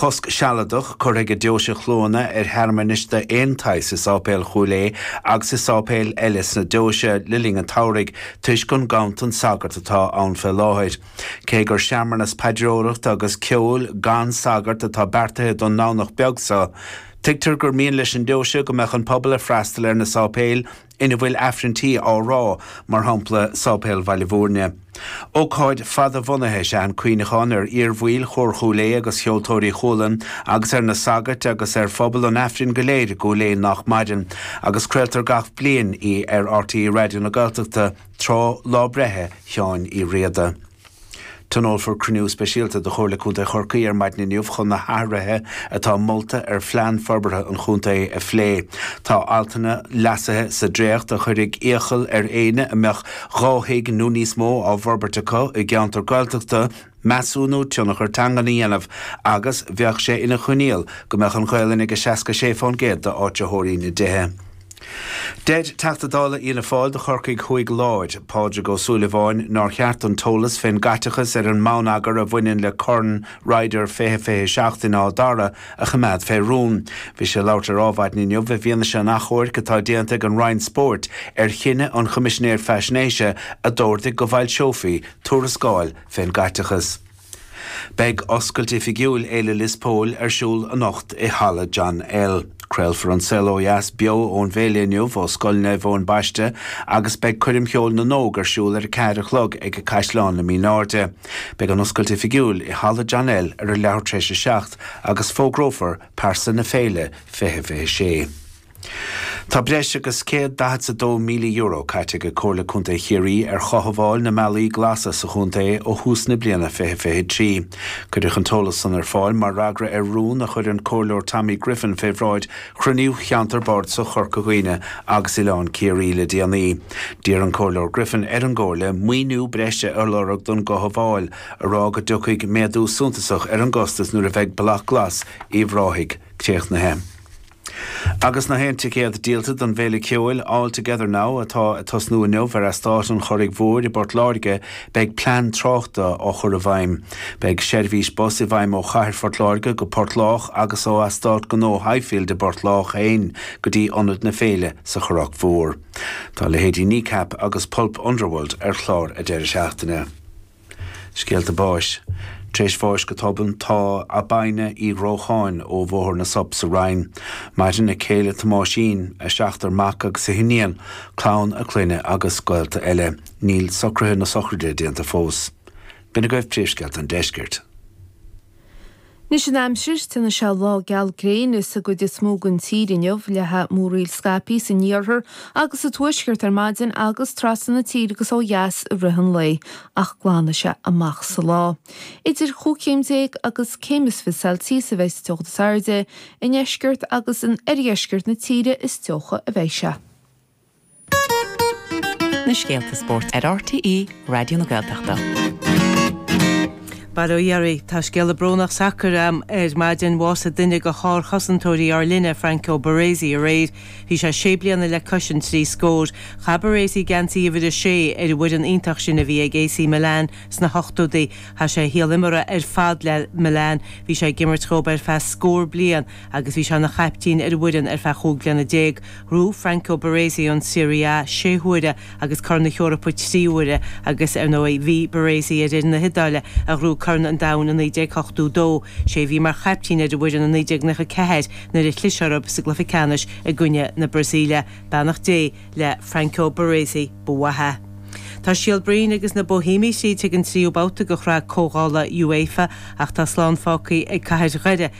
Cosc sealadach curtha ag Deoise Chluana ar shearmanais d'aon tsaghas i Sáipéal Chúil Aodha agus i sáipéil eile sna Deoise le linn an tSamhraidh toisc an ganntan sagart atá ann fé láthair. Cé gur searmanas paidreoireachta agus ceoil gan sagart atá beartaithe don nDomhnach beag seo, tuigtear gur mian leis an nDeoise go mbeadh an pobal ag freastal ar na sáipéil, ina bhfuil Aifreanntaí á rá, mar shampla Sáipéal Bhaile Mhúirne. Ócáid fadbhunaithe is ea an cuimhneachán ar iar-bhaill Chór Chúil Aodha agus Cheoltóirí Chualann agus ar na sagairt agus ar phobal an Aifrinn go léir i gCúil Aodha nach maireann, agus craoltar gach bliain í ar RTÉ Raidió na Gaeltachta tráth lá breithe Sheáin Uí Riada. Tionólfar cruinniú speisialta de Chomhairle Contae Chorcaí ar maidin inniu chun na hathruithe atá molta ar phlean forbartha an chontae a phlé. Tá altanna leasaithe sa dréacht a chuirfidh iachall ar éinne a mbeadh dhá thigh nó níos mó á bhforbairt acu i gceantar Gaeltachta measúnú tionchar teangan a dhéanamh agus bheadh sé ina choinníoll go mbeadh an Ghaelainn ag 66% d'áitritheoirí na dtithe. Deir Teachta Dála Fhianna Fáil do Chorcaigh Thuaidh Lár, Pádraig Ó Súilleabháin nár cheart an t-eolas fén gcaiteachas ar an mbonneagar a bhaineann le Corn Ryder 20 27 in Áth Dara a choimeád fé rún. Bhí sé ag labhairt ar Adhmhaidin inniu i bhfianaise an achomhairc atá déanta ag an Roinn Spóirt ar chinneadh an Choimisinéir Faisnéise a d'ordaigh go bhfoilseofaí tuarascáil fén gcaiteachas. Beidh oscailt oifigiúil Fhéile Lios Póil ar siúl anocht i Halla John L. Craolfar An Saol Ó Dheas beo ón bhféile inniu ó Scoil Naomh Eoin Baiste agus beidh Coirm Cheoil na nÓg ar siúl ar a ceathair a chlog ag Caisleán na Mine Airde. Beidh an oscailt oifigiúil i Halla John L. ar a leathuair tar éis a seacht agus fógrófar Pearsa na Féile 2026. Tá breis agus €142,000 caite ag Comhairle Contae Chiarraí ar chothabháil na mbealaí glasa sa chontae ó thús na bliana fiche fiche a trí. Cuireadh an t-eolas san ar fáil mar fhreagra ar rún a chuir an Comhairleoir Tommy Griffin fé bhráid chruinniú Cheantar Bardasach Chorca Dhuibhne agus Oileán Ciarraí le déanaí. D'iarr an Comhairleoir Griffin ar an gComhairle maoiniú breise a lorg don gcothabháil, á rá go dtiocfaidh méadú suntasach ar an gcostas nuair a bheidh Bealach Glas Uíbh Ráthaigh críochnaithe. Agus na haon ticéad díolta don bhféile ceoil All Together Now atá ag tosnú inniu ar eastát an Churraigh Mhóir i bPort Láirge, beidh plean tráchta á chur i bhfeidhm. Beidh seirbhís bus i bhfeidhm ó Chathair Phort Láirge go Port Lách agus ó Eastát Gnó Highfield i bPort Lách féin go dtí ionad na féile sa Churrach Mhór. Tá leithéidí Kneecap agus Pulp Underworld ar chlár an deireadh seachtaine. Scéalta báis. Tar éis bháis go tobann tá Abaina Uí Dhrócháin ó Bhóthar na Sop sa Rinn. Maireann a céile Tomáisín, a seachtar mac agus a hiníon, clann a clainne agus gaolta eile. Níl socruithe na sochraide déanta fós. B'in agaibh príomhscéalta an Deiscirt. Anois an aimsir. Déanfaidh sé lá geal gréine sa gcuid is mó den tír inniu, leathfaidh múraíl scaipthe san iarthar agus sa tuaisceart ar maidin agus trasna na tíre agus ó dheas i rith an lae, ach glanfaidh sé amach sa lá. Idir chúig chéim déag agus céim is fiche celsius a bheidh sa teocht is airde, i ndeisceart agus in oirdheisceart na tíre is teocha a bheidh sé. Na scéalta spóirt ar RTÉ Raidió na Gaeltachta. Bail ó Dhia oraibh, tá scéala brónach sacair agam ar maidin, bhásaigh duine de shárchosantóirí ár linne, Franco Baresi, aréir. Bhí sé sé bliana le cois an trí scór. Chaith Baresi geansaí uimhir a sé ar an bhfoireann iontach sin a bhí ag AC Milan sna hochtódaí. Chaith sé a shaol imeartha ar fad le Milan. Bhí sé ag imirt dóibh ar feadh scór bliain. agus bhí sé ina chaiptín ar an bhfoireann ar feadh chúig bliana déag, ghnóthaigh Franco Baresi an Serie A sé huaire agus Corn na hEorpa trí huaire agus, ar ndóigh, bhí Baresi ar fhoireann na hIodáile a ghnóthaigh Corn an Domhain i 1982, sé a bhí mar chaiptín ar an bhfoireann i 1994 nuair a chlis orthu sa gcluiche ceannais i gcoinne na Brasaíle. Beannacht Dé le Franco Baresi ba mhaith é. Tá Síol Broin agus na Boihéamaigh tríd chuig an tríú babhta de Chraobh Comhdhála UEFA ach tá slán fágtha ag Cathair Dhoire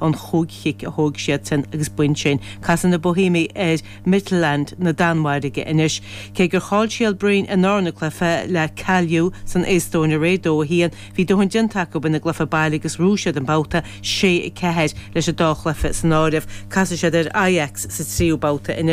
an chúig chic a thóig siadsan agus b'in sin. Casfaidh na Boihéamaigh ar Midtjylland na Danmhairge anois. Cé gur chaill Síol Broin an darna cluiche le Kalju san Eastóin aréir dó a haon, bhí dóthain déanta acu ina gcluiche baile agus ghnóthaigh siad an babhta sé, a ceathair leis an dá chluiche san áireamh. Casfaidh siad ar Ajax sa tríú babhta anois.